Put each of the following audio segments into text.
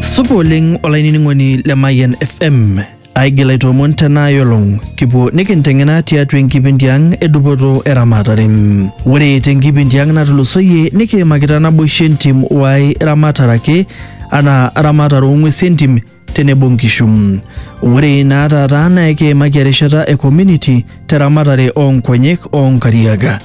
Supa oleng olainining'oni le Mayian FM. Aigil aitoomon tena olong kipuo nikinteng'ena tiatua enkipindi ang e dupoto eramatare. Ore tenkipindi ang natulusoyie nikiimakita naboisho entim wae ramatare ake anaa ramatare oo ng'uesi entim tenebo nkishu. Ore naa taata naa ekiimaki erishata e community te ramatare oo nkonyek oo nkariak.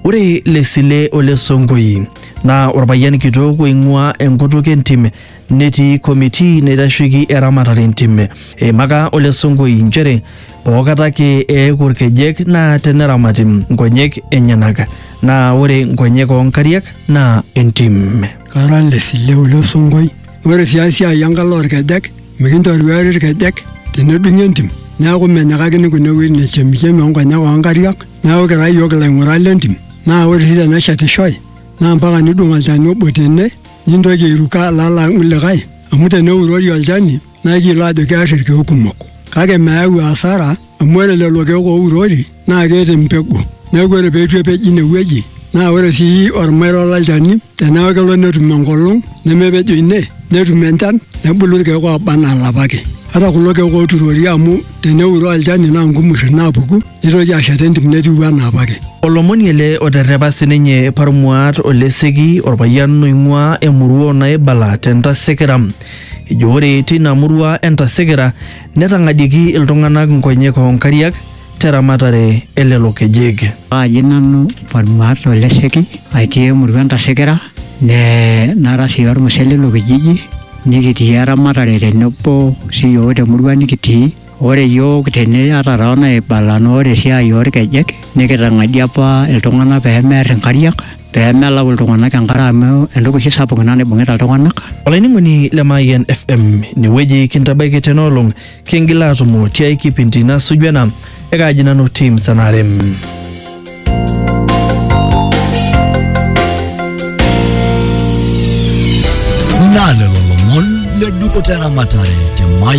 Ore Lesile ole Sonkoi naa orpayian kitok oing'ua enkutuk entim netii committee naitasheiki eramatare entim. Eimaka ole Sonkoi nchere pookata ake eeku irkejek naa teneramati nkonyek enyenak naa ore nkonyek oo nkariak naa entim. Kara Lesile ole Sonkoi. Ore sii esiai enkalo olkejek, mikintoruari ilkejek tenedung'i entim. Neaku menyikakini kuna wuejitin e chemichemi o nkonyek oo nkariak. Neaku kira iyiook ilaing'urak le ntim. Naa ore sii teneshetishoi naa mpaka nidung' olchani obo tene nintoki airuko alo alang' likae amu teneurori olchani naa ekiyiolo aajo kear ilkeek kumok. Kake meyau asara. amu ore lelo keek ourori naa keeta empegu neeku ore peitu epej ine wueji naa ore sii ormairo lolchani teneeku kelo netum enkolong nemepejo ine netum enchan nebulu irkeek oba anaa ilapa ake ata kulo keek oturori amu teneuroo olchani naa nkumurri naapuku nitoki ashet entim netiu anaa apake. Olomoni ele oterrepa sininye Parmuat Oleseki orpayian oing'uaa emurua o Naibala te Ntasekera. Ejo ore teina murua e Ntasekera Netang'adieiki iltung'anak nkonyek oo nkariak te ramatare e lelo kejek. Kaaji nanu Parmuat o Lesheki aitii emurua Entasekera nee nara sii olmusee leilo kijiji nikitii eramatare tenebo siyiook temurua nikitii. Ore iyiook tene ata too naibala naa ore esiai oo lkejek nikitang'adie apa iltung'anak pee merr inkariak. pee melau iltung'anak enkare amu entoki oshi sapuk ina naibung'ita iltung'anak. Olainining'oni le Mayian FM, inewueji kintabaiki tena olong, kingil aatumo tiai kipindi nasuju ena, ekaaji nanu Tim Sanarem. Naa lelo lomon le dupoto eramatare te Mayian